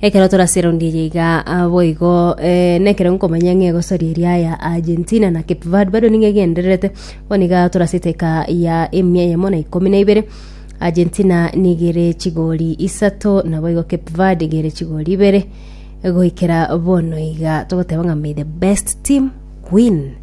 Ekero toraserondierie iga boigo nekero nkomanya ng'a egosoria eria aya Argentina na Cape Verde bado nigo egendererete, bono iga torasete eka ya emia eyemo na ikomi na ibere. Argentina nigo ere chigori isato, naboigo Cape Verde iga ere chigori ibere. Goikera bono iga togoteba ng'a may the best team win.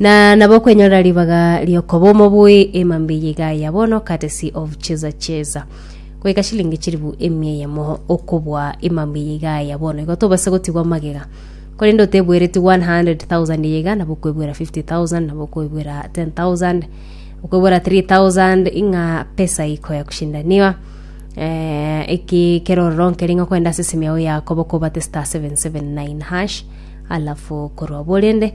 Na nabo okwenyorera ribaga riokoba omobui ema mbiya iga ya bono courtesy of cheza cheza goika shilingi chiribu emia eyemo okobua ema mbiya iga ya bono igo tobase gotigwa magega korende otebwereti 100,000 eye iga nabo okwebwera 50,000 nabo okwebwera 10,000 okwebwera 3,000 ing'a pesa iko ya kushindaniwa eh, eki kero ororonke ring'o kwenda ase esimi yao yakobo kobate star 779 hash alafu korwa borende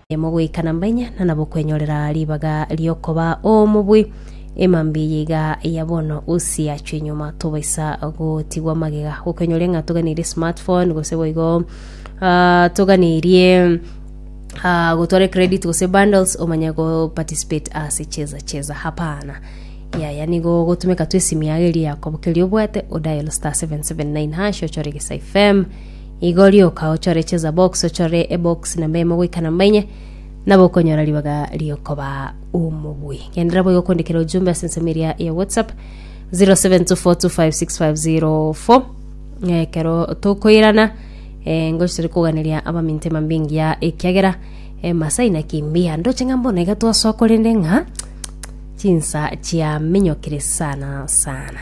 Mogoikana mbainya na nabokwenyorera ribaga riokoba omobui. Emambia eye iga ya bono usi achwe nyuma tobaisa gotigwa magega gokwenyoria ng'a toganirie smartphone gose boigo uh, toganirie uh, gotwara credit gose bundles omanye go participate ase cheza cheza hapana yaya nigo gotumeka tu esimi yago eria yakobo keria obwate o dial star 779 hash ochore gesa fm Igo rioka ochore chisabox, ochore ebox namba emo goika namba enye, nabo okonyora ribaga riokoba omobui. Genderera boigo kondikera ojumbe ase ensemo eria ya WhatsApp 0724256504 eh, kero tokoirana eh, ngochi tore koganeria abaminto emambe engiya ekiagera eh, masai na kimbia ndoche ng'a mbono iga twasoa korende ng'a chinsa chiaminyokire sana sana